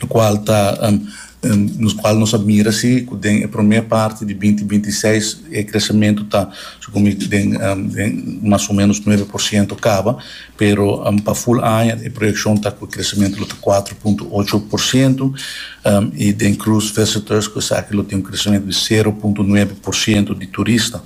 lokual ta lokual nos a mira si ku den e promé parti di binti binti i seis e kresementu ta su komo den den mas o menos nuebe por siento kaba pero pa ful aña e proyekshon ta ku e kresementu lo ta kuater punto ocho por siento i den krus visitors ku esaki lo tin un kresementu di sero punto nuebe por siento di turista.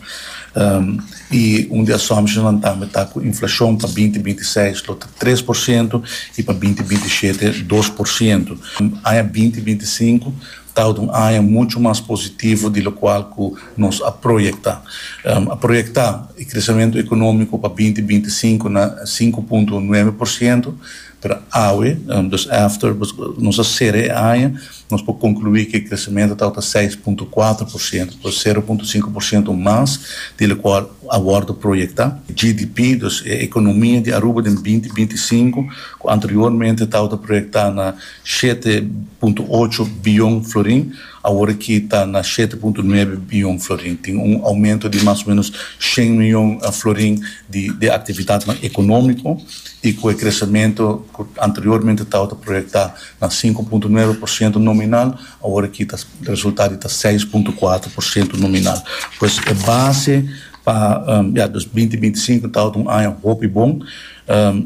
I un di assumptionsnan tambe ta ku inflashon pa binti binti seis lo ta tres por sientu i pa binti binti shete dos por sientu. Aña binti binti sinku ta tabata un aña muchu mas positivo di lokual ku nos a proyektá. A proyektá e kresementu ekonómiko pa binti binti sinku na sinku punto nuebe por sientu, Pero awe, dus after, nos a sera e aña, nos por conclui cu e crecemento tabata seis punto cuatro por ciento, dus sero punto cinco por ciento mas di locual a wordo proyecta. GDP, dus e economia di Aruba den binti binti i sinku, cu anteriormente tabata proyecta na shete punto ocho biyon florin, Awor ki ta na shete punto nuebe biyon florin, tin un oumento di mas o menos shen miyon florin di e aktividatnan ekonómiko i ku e kresementu ku anteriormente tau ta proyektá na sinku punto nuebe por siento nominal, awor aki ta resultá di ta seis punto kuater por siento nominal. Pues e base pa, ya, dos binti binti sinku tau ta un aña hopi bon.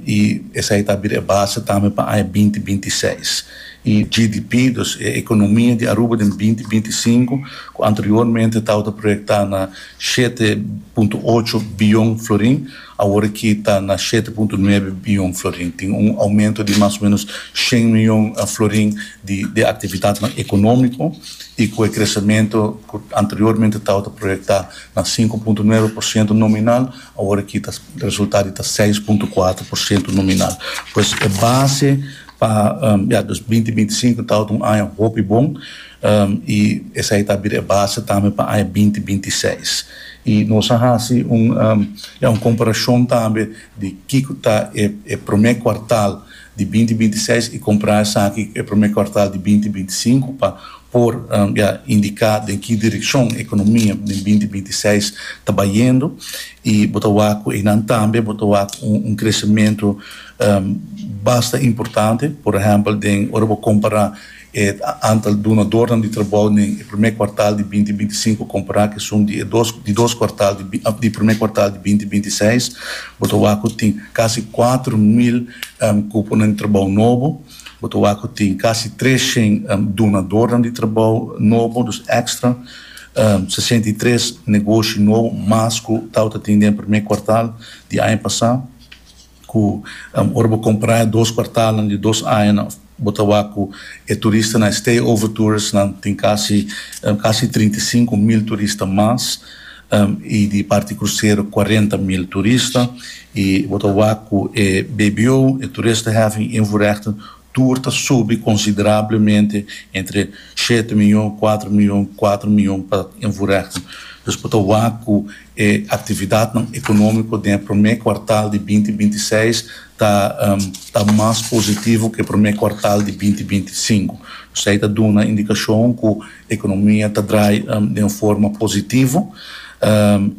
I esei ta bira e base tambe pa aña binti binti seis. E GDP, dus e ekonomia di Aruba den binti binti sinku, ku anteriormente tabata proyektá na shete punto ocho biyon florin, awor aki ta na shete punto nuebe biyon florin. Tin un oumento di mas o ménos shen miyon florin di e aktividatnan ekonómiko i ku e kresementu ku anteriormente tabata proyektá na sinku punto nuebe por siento nominal, Awor aki ta resulta di ta seis punto kuater por siento nominal. Pues e base pa ya dos binti binti sinku tabata un aña hopi bon i esei ta bira e base tambe pa aña binti binti seis. I nos a hasi un ya un komparashon tambe di kiko ta e promé kuartal. di binti binti seis i comprá esaki e promé cuartal di binti binti sinku pa por ya indicá den ki direccion economia den binti binti seis ta bayendo i bo ta wak cu einan tambe bo ta wak un crecemento basta importante, por ehempel den ora bo compará. E antal dunadornan di trabou den e promé kuartal di binti binti sinku kompará ku esun di e dos di dos kuartal di di promé kuartal di binti binti seis bo ta wak ku tin kasi kuater mil kuponan di trabou nobo, bo ta wak ku tin kasi tres shen dunadornan di trabou nobo, dus èkstra, sesenta i tres negoshi nobo mas ku tabata tin den e promé kuartal di aña pasá. cu ora bo compra e dos cuartalnan di dos añanan bo ta wak cu e turistanan, e stay over touristanan tin casi casi trinta i sinku mil turista mas y di parti crucero cuarenta mil turista y bo ta wak cu e bbo, e toeristenheffing invoerrechten, tur ta subi considerablemente entre shete miyon, cuatro miyon, cuatro miyon pa en voorrechten. Dus bo ta wak cu e actividadnan economico den e prome cuartal di binti binti seis ta ta mas positivo cu e prome cuartal di binti binti cinco. Esey ta duna indicacion cu Economia ta draai den un forma positivo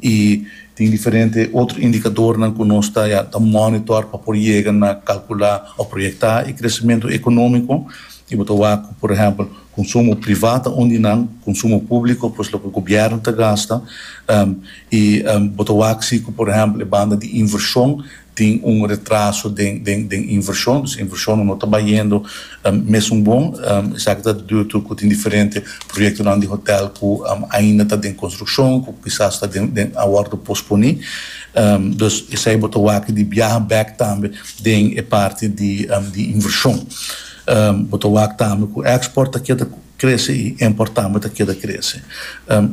y tin diferente otro indicadornan cu nos ta ya ta monitor pa por yega na calcula o proyecta e crecemento economico y bo ta wak cu por ehempel consumo priva ta un di nan, consumo publico pues loke gobierno ta gasta y bo ta wak si cu por ehempel e banda di inversion tin un retraso den den den invershon, dus invershonnan no ta bayendo mesun bon, esaki ta diu tur ku tin diferente proyektonan di hotèl ku ainda ta den konstrukshon, ku kisas ta den den a wòrdu posponí, dus esei bo ta wak di biaha bèk tambe den e parti di di invershon. Bo ta wak tambe ku èkspòrt ta keda krese i impòrt tambe ta keda krese.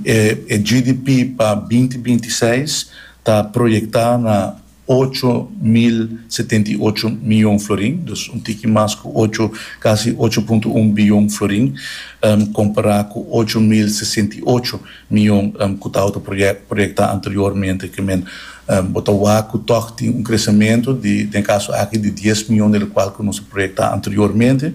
E GDP pa binti binti seis ta proyectá na ocho mil setenta i ocho miyon florin, dus un tiki mas ku ocho, kasi ocho punto un biyon florin, kompará ku ocho mil sesenta i ocho miyon ku tabata proyectá anteriormente, ke men bo ta wak ku tòg tin un kresamentu di den kaso aki di dies miyon del kual ku nos a proyectá anteriormente.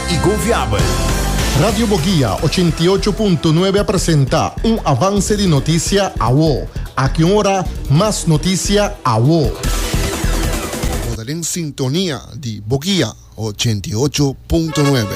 y confiabel. Radio Boguia ochenta i ocho punto nuebe a presenta un avance di noticia awo. Aki un ora mas noticia awo. Bo ta den sintonia di Boguia ochenta i ocho punto nuebe.